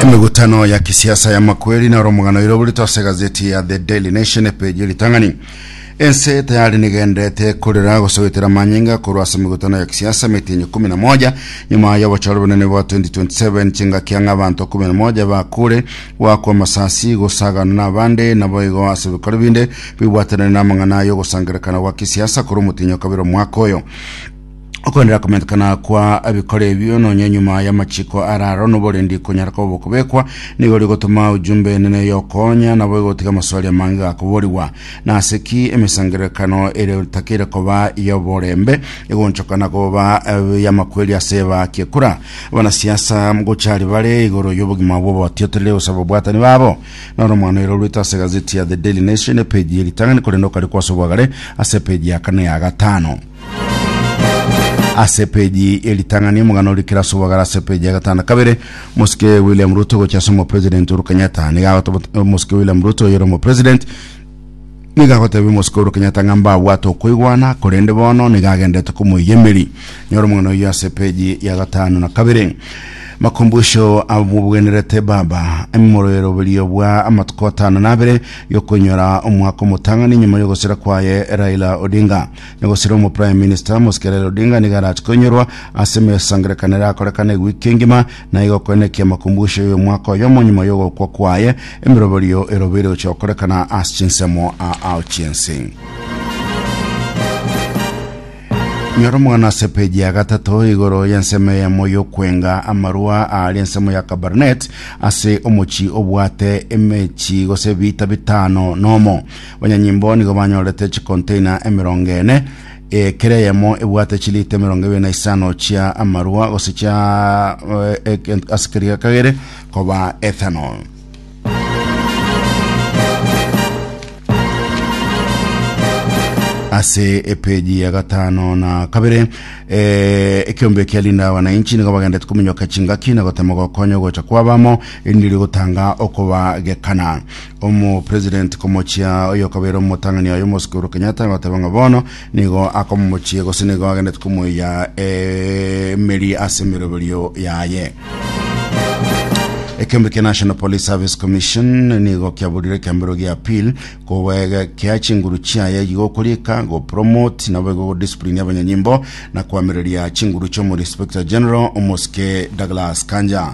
emegutano ya kisiasa ya makweri na romogano oiro oborito ase gazeti ya the daily nation epeji ritang'ani ense tayari nigenderete korera gosogotera manyinga korwa ase emegutano ya kisiasa emetinyi kumi na moja nyuma ya obochore bonene bwa 2027 chingaki ang'a abanto kumi na moja bakure gwakwa amasasi gosagana na abande nabo igo ase ebikoro binde bibwatanire na amang'ana y'ogosangerekana gwa kisiasa korwa omotinyi o kabere omwaka oyo okongera komentekana kwa ebikoro ebio nonya nyuma y'amachiko araro noborendi konyara koba okobekwa nigo ori gotoma ujumbe enene yokonya nabo egotiga amaswali amange gakoborigwa nase ki emesangerekano ere takeire koba yoborembe egonchokana koba eh, yamakweri ase eba kiekura abanasiasa gochari bare igoro y'obogima bw'obotiotire gose ababwatani babo noro omwana ero rwete ase gazeti ya the daily nation epeji eritang'ani korende okari kwase obwagare ase epeji ya kane ya gatano ase epeji ye ritang'ani omogano oria Kirasu Bogara ase epeji ya gatano kabere Mosike William Ruto gochia ase omopresident Uhuru Kenyatta nigo agoteba Omosike William Ruto oyore omopresident nigo agotebia Omosike Uhuru Kenyatta ng'a mbabwate okoigwana korende bono nigo agendete komoiyia emeri nyora omogano oyio ase epeji ya gatano na kabere makumbusho abobwenerete baba emoroberio bwa amatuko atano na abere yokonyora omwaka omotang'ani nyuma yogosira kwaye Raila Odinga Negosira omo Prime Minister Mosque Raila Odinga nigo arache koinyorwa ase emesangererekano erakorekane ewiki engima, na igo koenekia makumbusho y'omwaka oyomo nyuma y'ogokwa kwaye, emeroberio erobeire gochia gokorekana ase chinsemo aao chi'ense. Nyora omogano ase epeji ya gatato igoro y'ensemo eyemo y'okwenga amarua aare ensemo ya Kabarnet ase omochie obwate emechi gose ebiita bitano nomo. Banyanyimbo nigo banyorete chikonteina emerongo ene, eh, kera eyemo ebwate chilita emerongo ebere na isano chia amarwa gose chia eh, eke- ase keria kagere koba ethanol. ase epeji ya gatano na kabere eh, ekiombe kia linda wananchi nigo bagendete kominyoka chingaki na gotema gokonya gocha kwabamo erinde rigotanga okobagekana Omopresident komochia oyokobere omotang'ani oye omosike Uhuru Kenyatta goteba ng'a bono nigo akomomochie gose nigo agendete komoiya emeri ase emeroberio yaye. Ekembe kia National Police Service Commission nigo kiaburire ekeambero gia appeal kobegekea chinguru chiaye gigokorieka gopromote nabo igogodiscipline abanyanyimbo na koamereria chinguru chi'omoinspector general omosike Douglas Kanja.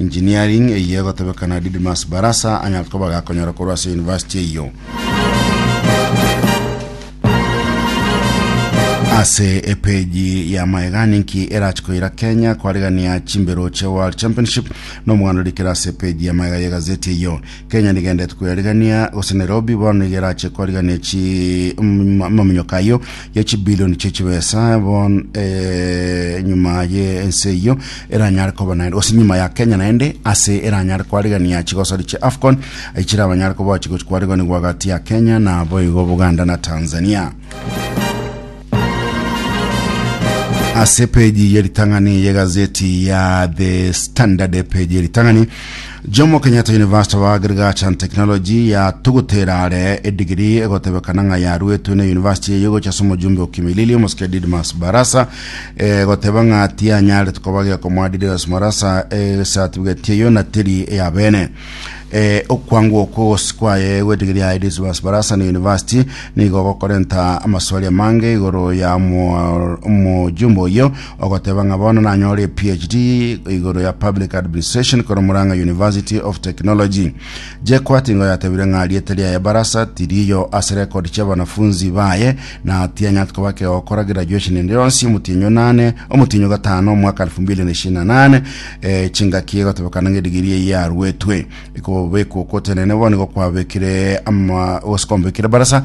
Engineering eyio egotebekana Didymus Barasa anyare koba gakonyora korwa ase University eyio. Ase epeji ya Maegani inki erache koira Kenya kwaregania chimbero che World Championship na omoganda orikera ase epeji ya Maega ye gazeti eyio. Kenya nigendete koyaregania gose Nairobi bono nigo erache koaregania chi mm, maminyoka ayio ye chibilioni chie chibesa bon eh, nyuma ye ense eyio eranyare koba naende gose nyuma ya kenya naende ase eranyare kwarigania chigosori chie afcon echire abanyare koba chigochi kwariganigwa gati ya kenya na boigo buganda na tanzania ase peji ye ritang'ani ye gazeti ya the standard peji ye ritang'ani Jomo Kenyatta University of Agriculture and Technology yatogotera are edigiri egotebekana ng'a yaruetwe na University eye gocha ase omojumbe o Kimilili omosike Didmus Barasa egoteba ng'a tianyaretwe koba gekomoa Didmus Barasa esatifigeti eyo na teri eya bene Eh, okwangwa okwo gose kwaye gwedigiri ya Didmus Barasa na University nigo gokorenta amaswali amange igoro ya omo- omojumbe oyo Ogoteba ng'a bono nanyore ePhD igoro ya Public Administration korwa Murang'a University of Technology. Jekwa tingo yatebire ng'a riete riaye Barasa tiriyo ase record chiabanafunzi baye na tianyati koba kegokora graduation ende yonsi omotienyo nane omotienyo gatano omwaka 2028 eh, chingaki egotebekana ng'a edigiri eye yaruetwe ikobekwa okotenene bono igo kwabekire ama gose kombekire Barasa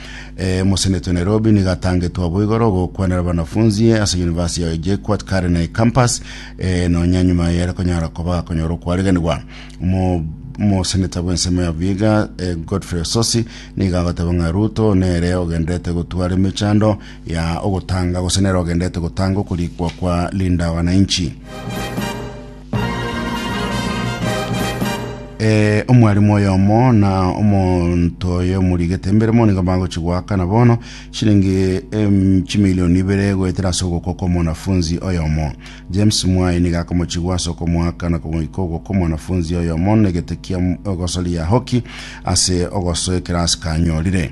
Eh, mosenetwe Nairobi niga atangetwe aboigoro ogokwanera abanafunzi ase university ya JKUAT Karine campus eh, nonya nyuma yere konyara koba akonyora okwariganigwa Omo- omoseneta bw'ensemo ya Vihiga eh, Godfrey Ososi niga agoteba ng'a Ruto nere ogenderete gotwara emechando ya ogotanga gose nere ogenderete gotanga okorikwa kwa Linda Wananchi Eh, omwalimu oyomo na omonto oyo omorigete mbere mono nigo bagochi goakana bono chiringi em, chimilioni ibere goetera ase ogoko kw'omwanafunzi oyomo james mwayi nigo akomochigwa ase okomoakana komoika ogoko omwanafunzi oyomo negete kia m- ogosoria hoki ase ogosoa ekerasi kanyorire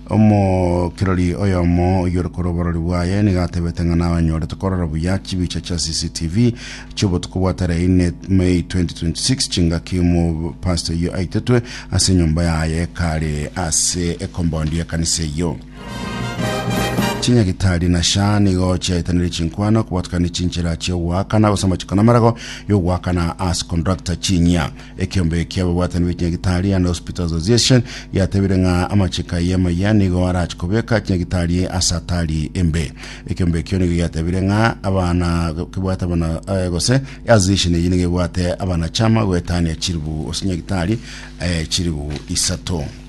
Omokirori oyomo oyore korwa oborori bwaye nigo atebete ng'a nabanyorete korora buya chibicha chia CCTV chiobotuko bwa tarehe ine May 2026 chingaki omopastor oyio aitetwe ase enyomba yaye kare ase ekombondi y'ekanisa eyio. Chinyagitari na SHA nigo chiaetanire chinkwana kobatukania chinchera chiogoakana gose amachiko namarago yogoakana ase conductor chinyia Ekeombe ki'ababwatani be chinyagitari and Hospital Association giatebire ng'a amachiko ayio amaya nigo arache kobeka chinyagitari ase atari embe. Ekeombe ekio nigo giatebire ng'a abana kebwate abana eh, gose association eyio nigo ebwate abanachama goetania chiribu ase chinyagitari eh, chiribu isato.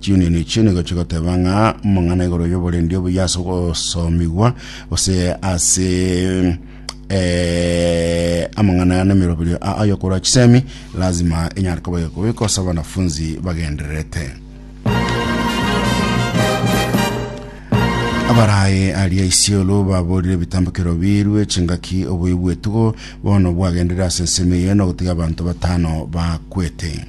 Chiunioni echio nigo chigoteba ng'a omong'ana igoro y'oborendi obuya ase ogosomigwa gose ase eh, amang'ana aya n'emeroberio a- ayo korwa chisemi lazima enyare koba egekobekwa ase abanafunzi bagendererete abarae aria isiolo baborire ebitambokero birwe chingaki obuya bw'etugo bono bwagenderere ase ensemo eye nogotiga abanto batano bakwete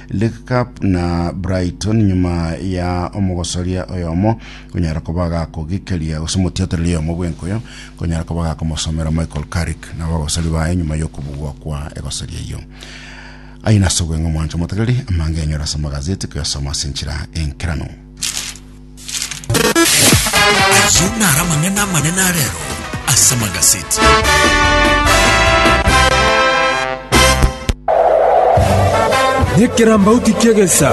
League Cup na Brighton nyuma ya omogosoria oyomo konyara koba gakogikiria gose omotiotereri oyomo bw'enkuyo konyara koba gakomosomera Michael Carrick na abagosori baye nyuma y'okobugwa kwa egosoria eyio aye nase obweng'e omwancho motegereri amangenyo ase amagazeti koyasoma ase enchera enkeranu Ayio naro amang'ana amanene a rero ase Magaseti. Nekerambauti ki'egesa,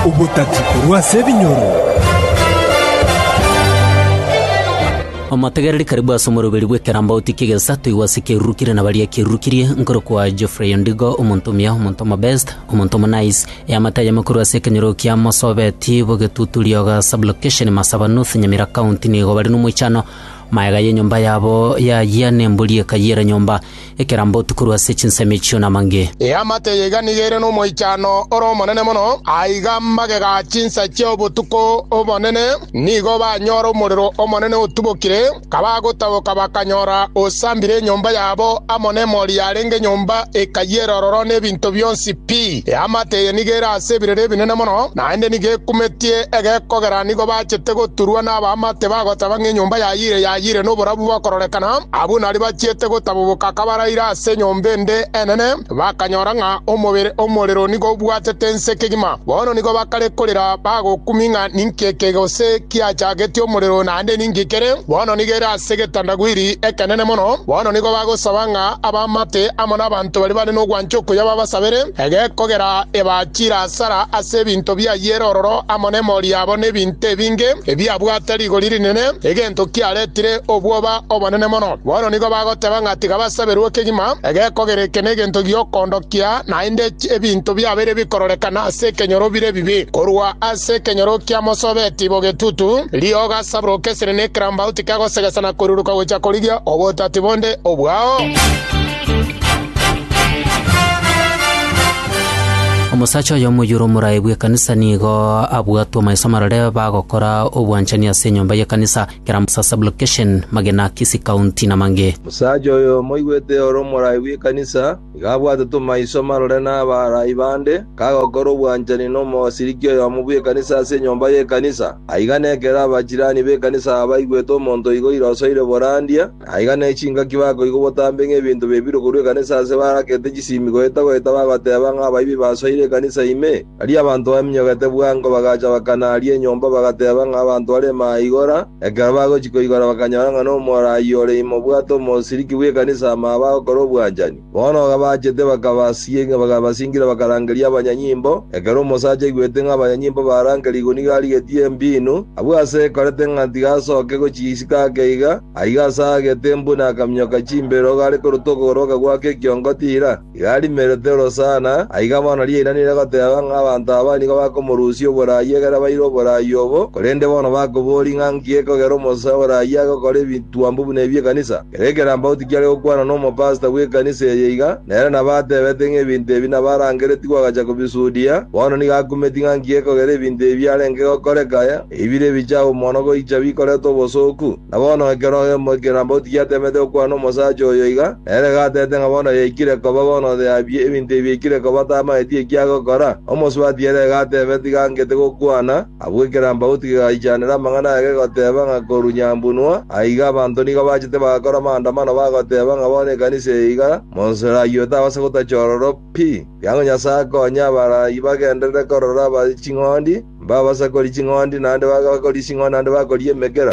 obotati korwa ase ebinyoro. Omotegereri karibu ase omoroberi bw'ekerambauti ki'egesa toigwe ase ekerurukire na baria ekerurukirie, nkorokwa Geoffrey Ondigo, omonto omuya, omonto omobest, omonto omonice, Eamate ayemo korwa ase ekenyoro kia Mosobeti, Bogetutu, Rioga, Sublocation, Masaba, North Nyamira County, nigo bare nomoichano. Magega y'enyomba yabo y'ayia nembori eka y'era nyomba, ekerambotu korwa ase chinsemo echio namange. Eamate yaiga nigo ere nomoichano ore omonene mono, aiga magega chinsa chi'obotuko obonene nigo banyore omorero omonene otubokire. Kabagotaboka bakanyora osambire enyomba yabo amo nemori yarenge nyomba ekayia ere ororo nebinto bionsi pi. Eamate eye nigo ere ase ebirero ebinene mono, naende nigo ekumetie egekogera nigo bachete goturwa nabaamate bagoteba ng'a enyomba yayire yayire noborabu bokororekana. Abwo nario bachiete gotaboboka kabaraire ase enyomba ende enene. bakanyora ng'a omobere omorero nigo obwatete ense kegima. Bono nigo bakare korera bagokumi ng'a ninki eke gose kiachagetie omorero naende ninki kere. Bono nigo ere ase egetandagwiri ekenene mono. Bono nigo bagosaba ng'a abaamate amo n'abanto baria bare n'ogwancha okuya babasabere, egekogera ebachire asara ase ebinto biayio ere ororo amo nemori yabo nebinto ebinge ebiabwate rigori rinene, egento kiaretire obwoba obonene mono. Bono nigo bagoteba ng'a tiga basaberwe ekegima egekogera eke negento giokondokia naende ebinto biabeire bikororekana ase ekenyoro bire ebibe. Korwa ase ekenyoro kia mosobe etibo getutu, riogo gasaburoka esere ne ekerambaut kegosegesa na koiruruka gocha korigia obotati bonde obwao. Omosacha oyo omoyuro omoraai bw'ekanisa nigo abwatwe amaiso amarore bagokora obwanchani ase enyomba y'ekanisa. Kera Musa Sublocation, Magena, Kisii County, na mangĩ. Omosacha oyomo oigwete ore omoraai bw'ekanisa, nigo abwate tomaiso marore n'abaaraai bande, kagokora obwanchani nomosiriki oyomo bw'ekanisa ase enyomba y'ekanisa. Aiga nekero abachirani b'ekanisa aba baigwete omonto oigo oira osoire borandia, Aiga ne chingaki bakoigwa obotambe ng'ebinto bebirwe korwa ekanisa aase barakete chisimi goeta-goeta bagoteeba ng'a abaibi basoire ekanisa ime. Aria abanto baminyogete bwango bagacha bakana aria enyomba bagateeba ng'a abanto bare maigora. Ekero bagochia koigora bakanyora ng'a nomora ayio ore ime obwate omosiriki bw'ekanisa amaabe agokora obwanchani. Bono agabachete bakabasinga, bakabasingira bakarangeria abanyanyimbo. Ekero omosacha aigwete ng'a abanyanyimbo barangerigwe nigo arigetie embiinu, abwo ase ekorete ng'a tigasoke gochia isiko ake iga, aiga ase aagete embuni akaminyoka chimbero iga are korutwa okogoro bakagwaka ekiongo tiira, iga arimerete orosana, aiga bono riainanire goteba ng'a abanto aba nigo bakomorusia oboraai ekero abaire oboraai obo, korende bono bakoboria ng'a nki ekogera omosacha oboraai agokora ebitwambo buna ebi ekanisa. Kera ekerambauti kiare gokwana nomopasta bw'ekanisa eye iga, nere nabo atebete ng'a ebinto ebi nabo arangeretigwe agacha kobisudia, bono nigo akumeti ng'a nki gekogera ebinto ebi biarenge gokoreka aya, ebire ebichabo mono goicha bikorete obosooku. Na bono ekero emo ekerambauti giatemete gokwana nomosacha oyo iga, nere iga atebete ng'a bono yaikire koba, bono onde abie ebinto ebi yaikire koba tamaeti eki agokora. Omosubati ere iga atebete iga angete gokwana, Abwo ekerambauti kegaichanera amang'ana aya kegoteeba ng'a korwa nyambunua aiga abanto nigo bachete bagakora amaandamano bagoteeba ng'a bono ekanisa eye iga monso erayio etabase gotacha ororo pi. Kiang'o Nyasae akonye abarayio bagenderere korora aba ching'ondi, mbabasakori ching'ondi, naende bakori ching'ondi naende bakori emekera.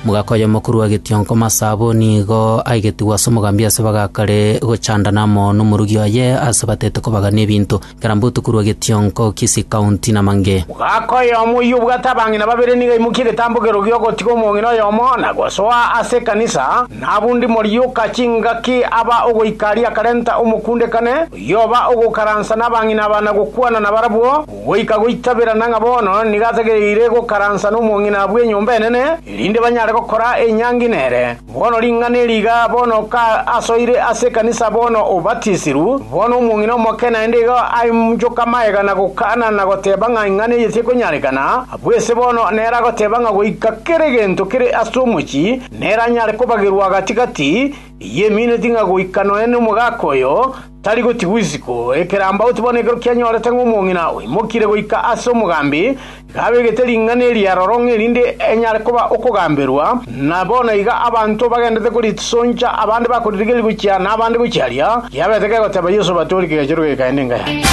Mogaaka oyomo korwa getionko masaboni igo aigetigwe ase omogambi ase bagakare gochandana amo nomorugi oye ase batete kobagana ebinto. Karambotu korwa getionko Kisii County namange. Mogaaka oyomo oyio obwate abang'ina babere nigo aimokia egetambokero gi'ogotiga omong'ina oyomo na gosoa ase ekanisa, nabwo ndimori yoka chingaki aba ogoika aria akarenta omokundekane oyio oba ogokaransa nabang'ina aba na gokwana nabarabwo, goika goitabera na ng'a bono nigo atagereire gokaransa nomong'ina bw'enyomba enene, erinde banyare gokora enyangi nere. Bono ring'ana eri iga, bono ka asoire ase ekanisa bono obatisirwe, bono omong'ina omoke naende igo ainchoke amaega na gokana na goteba ng'a ing'ana eye tekonyarekana, abwo ese bono nere agoteba ng'a goika kera egento kere ase omochie nere anyare kobagerwa gati-gati, eyiemineti ng'a goika nonya nomogaka oyo, Tari gotigwa isiko ekerambauti bono ekero kianyorete ng'a omong'ina oimokire goika ase omogambi, iga abegete ring'ana eri aroro ng'a erinde enyare koba okogamberwa, na bono iga abanto bagendete korisoncha, abande bakoririgeria gochia, na abande gochia aria riabete kegoteba Yeso batoorike egechero geikaende enga yaye.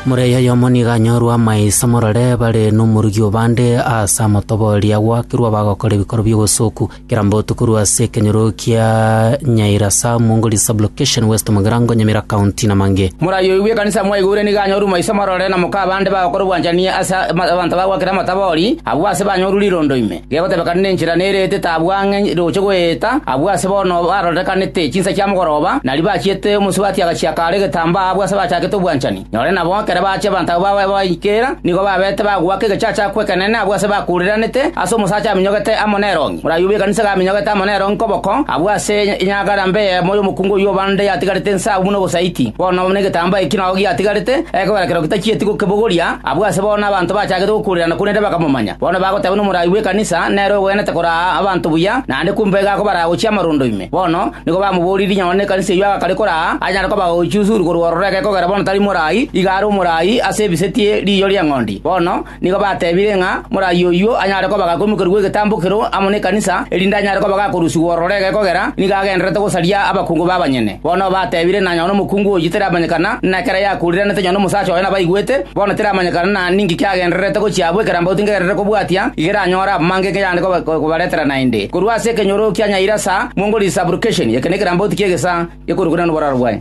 Murei oyomo nigo anyorwe amaiso morore bare nomorugi o bande ase amotoboria, gwakerwa abagokora ebikoro bi'obosoku, Kera mbotu korwa ase ekenyoro kia Nyairasa, Mwongori Sub-location, West Mugirango, Nyamira County, na mang'e. Morayoigwe ekanisa mwaigure nigo yanyorure maiso marore na moka abande bagokora obwanchani ase abanto bagwakire amatabori, abwo ase banyorure rirondo ime, gegotebekana nenchera nerete tabwo ang'e roche goeta, abwo ase bono barorekanete chinsa chia mogoroba, na ribachiete omosubati agachiaka are egetambaa abwo ase bachakete obwanchani. Nore nabo ekero bachia abanto abwo babaye babaikera, nigo babeete bagoaka egechacha kw'ekeneene agwo aase bakuureranete aase omosacha aminyogete amo nerongi. Moraiyo bw'ekanisa iga aminyogete amo nerongi koboko, abwo aase enyagara mbe eyemo y'omokungu oyio o bande yatigarete ense agwo buna obosaiti. Bono negetambaa eki nao giatigarete, ekogera kereo gitachieti gokebogoria, abwo aase bono abanto bachagete gokuurerana korende bakamomanya. Bono bagoteba nomorai bw'ekanisa nere ogwenerete koraa abanto buya, naende kumbe iga akobaraa gochia amarondo ime. Bono nigo bamoboririe nonya nekanisa eyio agakare koraa anyare koba ogochia usuru korwa ororo eke kogera bono tari morai, iga are omorai ase ebisetie riiyo ri'eng'ondi. Bono nigo batebire ng'a morai oyio anyare koba gakoimokerwa gw'egetambo kero amo nekanisa, erinde anyare koba gakorusigwa ororo eke kogera nigo agendererete gosaria abakungu b'abanyene. Bono batebire na nonya nomokungu oyio teramanyekana, ng'a ekero yakuuriranete nonya nomosacha oye nabaigwete, Bono teramanyekana na ninki kiagendererete gochia abwo ekerambauti ngegerere kobwatia, iga eranyore abamange inki yande kobaretera naende. Korwa ase ekenyoro kia Nyairasa mwongorire Subrogation, eke nekerambauti ki'egesaa gekorukorana noboraro bwaye.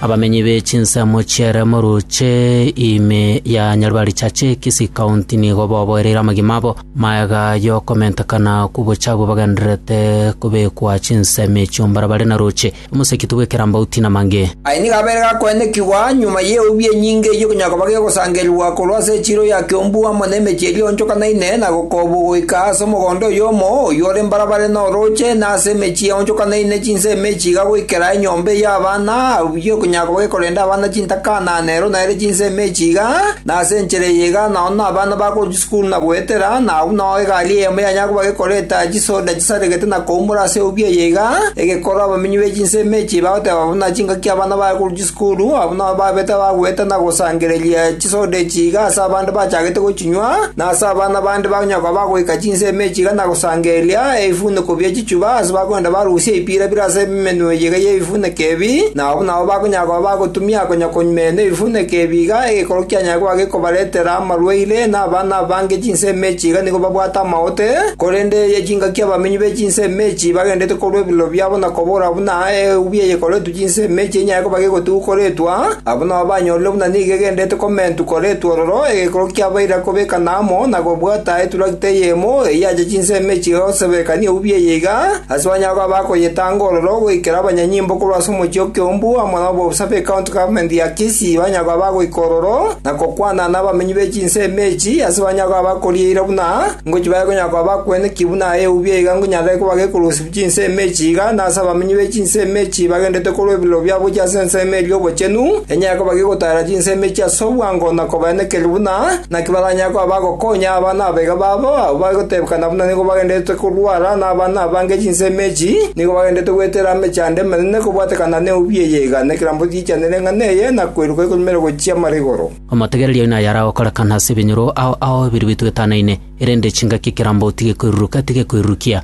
Abamenyi be chinsemo chiere morooche ime ya Nyaribari Chache, Kisii County nigo boboereire amagima abo magega y'okomentekana kw'obochabo bagendererete kobekwa chinsemo echio mbaria bare na roche. Omoseketu bw'ekerambauti namange. Aya nigo abeire gakoenekigwa nyuma y'eubi enyinge eyio konya koba gegosangererwa korwa ase echiiro ya Kiombu amo nemechie eria eonchokanaine na Gokobu goika ase omogondo oyomo oyio ore mbarabare na orooche na ase emechie eonchokanaine chinsemo echi iga goikera enyomba eya abana abwo konya koba gekorenda abana chintakana nero naere chinsemo echi iga na ase enchera eye iga nao nabana ba Buna goetera, na agwo nao egari eyemo yanyare koba gekoreta chisoda chisaregete na koumora ase obio eye iga, egekora abamenyi be chinsemo echi bagoteba buna chingaki abana bare korwa chisukuru, abwo nao babete abagoeta na gosangereria chisoda echi iga ase abande bachagete gochinywa, na ase abana bande bakonyara koba bagoika chinsemo echi iga na gosangereria ebifuniko bie chichuba ase bakogenda barusia ebipiira bire ase emenwa eye iga y'ebifuniko ebi, na abwo nao bakonyara koba bagotumia konya komena ebifuniko ebi iga egekoro kianyare koba gekobaretera amarwaire, na abana abange chinsemo echi iga nigo babwate amaote, korende eye chingaki abamenyi be chinsemo echi bagenderete korwa ebiroro biabo na kobora buna eubi eyekoretwe chinsemo echi enyare koba gegotigwa koretwa, abwo nabo banyorire buna nigo egenderete komentwa koretwa ororo, egekoro kiabaire kobekana amo na kobwata eturakita eyemo eyio yacha chinsemo echi iga goseberekania eubi eye iga, ase banyare koba bakoyetanga ororo goikera abanyanyimbo korwa ase omochie o Kiombu amo na obosabe ecounty government ya Kisii banyare koba bagoika ororo, na gokwana nabamenyi be chinsemo echi ase banyare koba bakoria eira buna ngochi bare konyara koba bakwene ki buna eubi eiga nkonyarekane koba gekorosia chinsemo echi iga, na ase abamenyi be chinsemo echi bagenderete korwa ebiroro biabo gochia ase ensemo eria y'obochenu, enyare koba gegotaara chinsemo echi ase obwango na kobaenekeria buna naki baranyare koba bagokonya aba nabaiga babo, abwo bagotebekana buna nigo bagendererete korwara, na abana abange chinsemo echi nigo bagendererete goetera amechando emanene kobwatekana neubi eye iga, na ekerambe. Ichanere ng'a neye nakweruka ekorumera gochia amara igoro. Omotegereria oino aye aragokorekana ase ebinyoro ao ao ebirwe etwetanaine, erende chingaki ekerambe otige koiruruka, tige koirurukia.